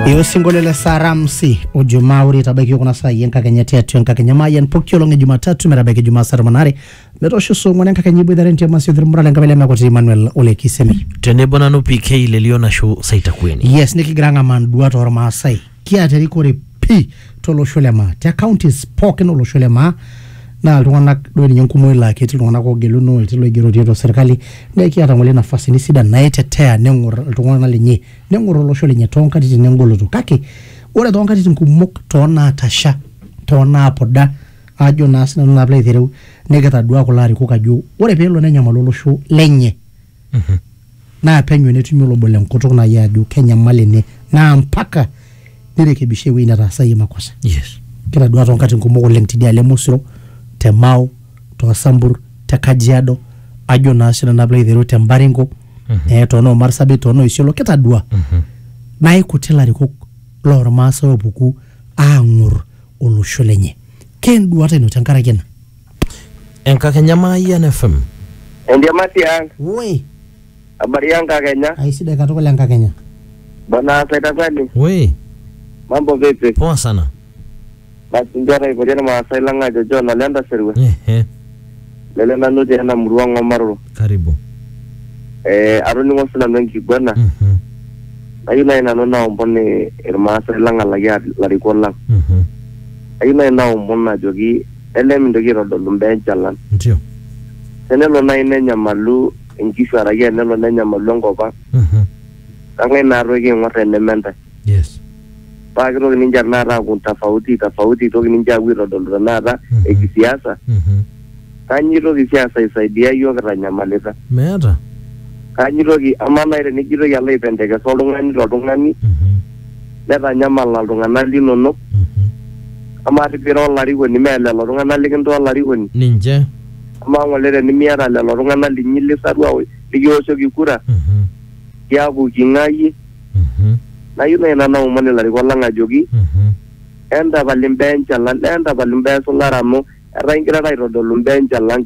Iyo sinkolio le Saramsi Ijumaa ore itabaiki kuna saai enkakenya tiatua enkakenya maayian pooki olong e Jumatatu metabaiki Jumaa saa tomon are metoosho saa ong'wan enkakenya iboitare entiama sio thirmura lenkabila emekoti Emmanuel Ole Kisemi. tenebo nanu PK Lelio Nashu Saitakueni. Yes nikigira ang'amaa nduat ormaasai kiata erikore pii tolosho le maa te counties pookin olosho le maa naa iltung'anak doi ninye enkumoi laa ketii iltung'anak oogeluno etii iloigerotie te serkali naa kiata ng'ole nafasini sidan naitetea neng'or iltung'anak lenye neng'or olosho lenye toonkatitin engoloto kake ore toonkatitin kumok toonaatasha toonaapuda ajo naa sinanu naa piilo aitereu nikitaduaa kulo arikok ajo ore peelo nenyamalu olosho lenye naa penyo netumi olobo le nkutuk naaji ajo kenyamal ene naa mpaka nirekebisha ewueji netaasayie makosa. Yes. Kitadua toonkatitin kumok oleng tidialo e Mosiro, te Mao, too Sambur, te Kajiado, ajo naa sii nanu pilo aitereu te Mbaringo, eh, too noo Marsabit, too noo Isiolo, kitadua. Naa ikuti ilarikok lormaasai opuku aang'ur olosho lenye. Keenduata ino tenkaraki ena? Enkakenya Mayian FM. Endiamati ang, Woi, habari ya Nkakenya, aisidai katukul enkakenya. bwana Saitangani, Woi, mambo vipi? poa sana. Basi ndio anaipotia na Maasai lang ajo John alienda Serwe, Ehe, lele nanu te ena murua Ng'omaroro. karibu. Eh, atoning'o sinanu enkiguana, Mhm, nayieu nai nanu naomon eh, Irmaasai lang alaki a- ilarikok lang. mhm. Nayieu nai naomon ajoki neme mintoki aitodolu mbaa enchalan. Ndio. Tenelo naaji nenyamalu inkishu araki enelo nenyamalu enkop ang, Mhm. kang'ae naa toi kiing'or teneme ntae? Yes. Paa kitoki ninche tenakata aaku tofauti tofauti, eitoki ninche aapuo aitodolu tenakata Mhm. ekisiasa. Mhm. Kanyoo eitoki siasa aisaidia iyiook kitanyamalita? Meeta. Kanyoo eitoki, amaa naaji tenijo aitoki alo aipendekesa oltung'ani toltung'ani, Mhm. netanyamala iltung'anak linonok. Amaa arrip ira olarikoni mee lelo tung'anak likintaa olarikoni? Ninche. Amaa ng'ole tenimiata lelo tung'anak linyi lisarua likioshoki kura iyaku king'aa iyie? Nayieu nai nanu naomon ilarikok lang' ajoki entapal imbaa enchalan, entapal imbaa esulare amu etaa ingirara aitodolu imbaa enchalan.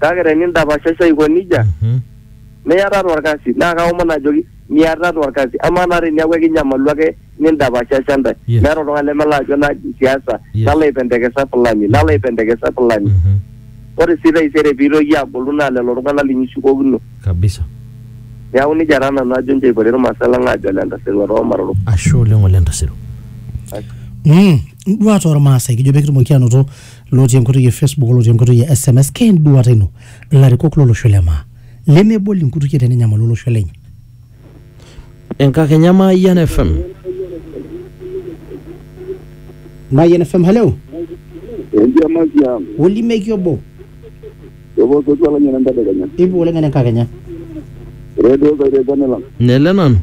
Kake teni indapashasha aiko nijia, Mhm. niatata olkasi. Naa kaomon ajoki, miatata olkasi. Amaa naa teniaku ekinyamalu ake nindapashasha intae. Yes. Meeta oltung'ani lemelo ajo naji siasa, Yes. nalo aipendekesa fulani, nalo aipendekesa fulani. Mhm. Ore sii taisere piilo iyie agolu naa lelo tung'anak linyi ishukokino. Kabisa. Neeku nijia taa nanu ajo nchoo eipoti ilmaasai lang aajo ole ntasero too maroro. Ashe oleng ole ntasero. Mm, nduat ormaasai kijo pee kitumoki anoto lotii enkoitoi e Facebook olotii enkoitoi e SMS kee enduata ino ilarikok lolosho le maa lemebol inkutukie tenenyamalu olosho lenye. Enkakenya Mayian FM. Mayian FM, hello. Enkiamaki ang. Olimeki obo. Epuo sotua lang'eni entadekenya. Ipu oleng ene enkakenya. Redio Kairepone lang. Nele nanu.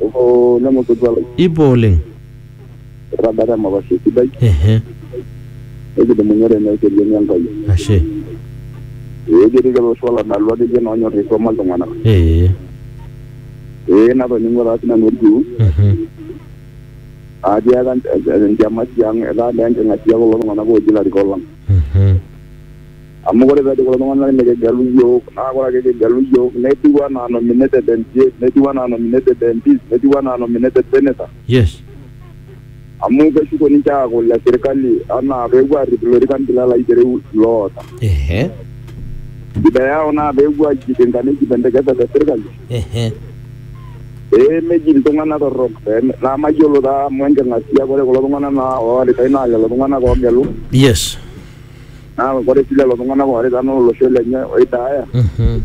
Epuo lemo sotua lang. Ipo oleng. irragata emapashi esidai ehe nikidumunye tene ekedienye Enkai ashe ee ketii lelo oshi oladalu akeyie naa onyorr aisoma iltung'anak ee ee natoning'o taa sinanu orkiu mhm atiaka enchama tiang etaa naa enking'asia kulo tung'anak ooji ilarikok lang mhm amu ore peejo kulo tung'anak nikigelu iyiok naa ore ake kigelu iyiok netiu anaa nominated MCA netiu anaa nominated MPs netiu anaa nominated senator Yes. amu keshuko ninche aaku le sirkali anaa peepuo aarrip ilorikan bila laitereu loota Ehe. shida yao naa peepuo aijipinga neijipendekeza te sirkali Ehe. pee meji iltung'anak torrok pee me- naa mayiolo taa amu enking'asia ore kulo tung'anak naa ooritai naa lelo tung'anak oogelu Yes. naa ore sii lelo tung'anak oorita naa olosho lenye oidaaya Mhm.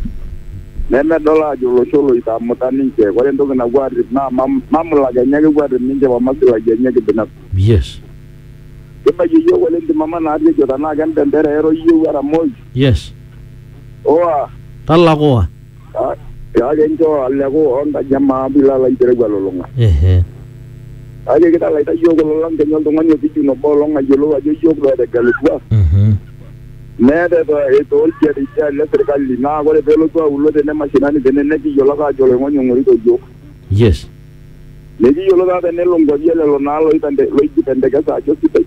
nemedol aajo olosho loitamuta ninche. Ore entoki napuo aarrip naa mam- mamlaka enye ake epuo aarrip ninche o maslahi enye kibinafsi. Yes. Kibaiki iyiook oleng ntimama naarri ejo tenaa kembendera eiro iyieu era moi. Yes. Oa. Talak oa. kake nchoo aleku oo nkaji e maa pilo alo aitereu elulung'a. Ehe. Kake kitalaita iyiook kulo lang kenya oltung'ani opijun obo olong ayiolou ajo iyiook doi etegelutua. Mhm. Meeta eto- etoolkia te idia alo e sirkali naa ore pee elotu aulo tene mashinani tene nekiyiolo ake aajo oloing'oni ong'orito iyiook. Yes. Mekiyiolo taata enelo nkuapi e lelo naa loipende loijipentekesa ajo sidai.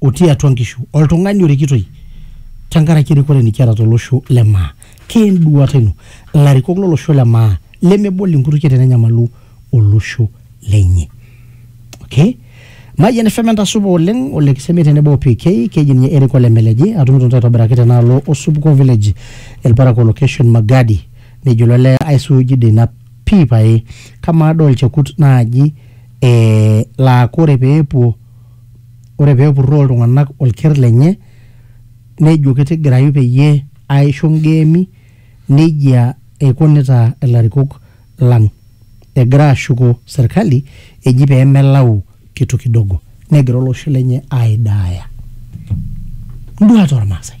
otii atua nkishu oltung'ani orikitoi tenkaraki erikore nikiata tolosho le maa keenduata ino ilarikok lolosho le maa lemebol inkutukie tenenyamalu olosho lenye okay Mayian FM entasupa oleng ole Kisemi tenebo o PK keji ninye Eric ole Meleji atumito ntae aitobiraki tenaalo Osupuko Village Elparakuo location Magadi nejo ilo lee aisuuji dei ina pii pae kamaa doi olchekut naaji eh, laa kore peepuo ore pee epurroo iltung'anak olker lenye nejo kitigirayu peyie aisho ngeemi nejia eikunita ilarikok lang egira aashuko serkali eji pee melau kitu kidogo negira olosho lenye aidaaya. Nduat ormaasai.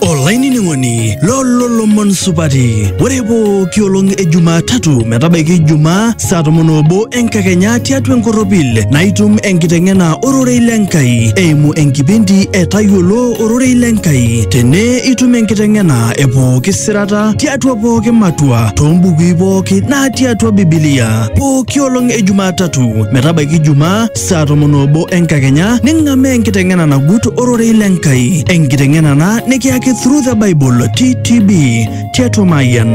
olainining'oni lololomon supati ore pooki olong e jumatatu metabaiki ijumaa saa tomon obo enkakenya tiatua enkorropil naitum enkiteng'ena ororei le nkai eimu enkipindi e tayiolo ororei le nkai tene itum enkiteng'ena e pooki sirata tiatua pooki matua toombukui pooki natii atua bibilia pooki olong e jumatatu metabaiki ijumaa saa tomon oobo enkakenya ning'amaa enkiteng'ena nagut ororei le Nkai, enkiteng'ena ena nikiyaki Through the Bible TTB tiatua Mayian.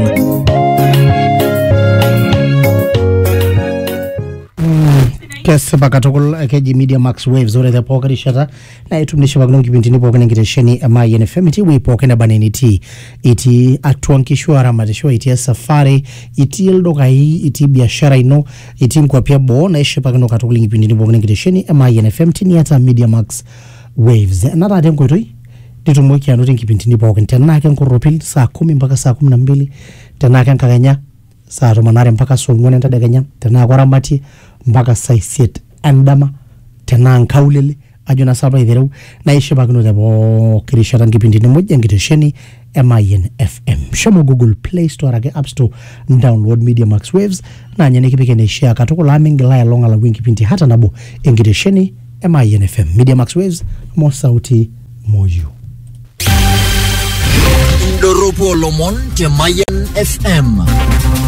kesipa katukul keji media max waves ore te pooki rishata na itum nishipakino nkipindini pookin enkitesheni e Mayian FM itii ewueji pookin neba enaa enitii itii atua nkishu aramatisho itii esafari itii ildukai itii biashara ino itii nkuapi eboo naishipakino katukul nkipindini pookin enkitesheni e Mayian FM tiniata Media Max Waves ena taata enkoitoi nitumoki anoto nkipindini pookin tenaa ke nkorropil saa kumi mpaka saa kumi na mbili tenaa ke nkakenya saa tomon aare mpaka saa ong'uan entedekenya tenaa koramatie mpaka saa isiet endama tenaa nkaulele ajo naa sapa aitereu naishipakino te pooki rishata nkipindini muj enkitesheni e Mayian FM. Shomo Google Play Store araki App Store download Media Max Waves naa ninye nikipik eneishaa katukul amu mingil ailong alau enkipindi hata nabo enkitesheni e Mayian FM. Media Max Waves moo sauti moyiu. Indorropu olomon te Mayan FM.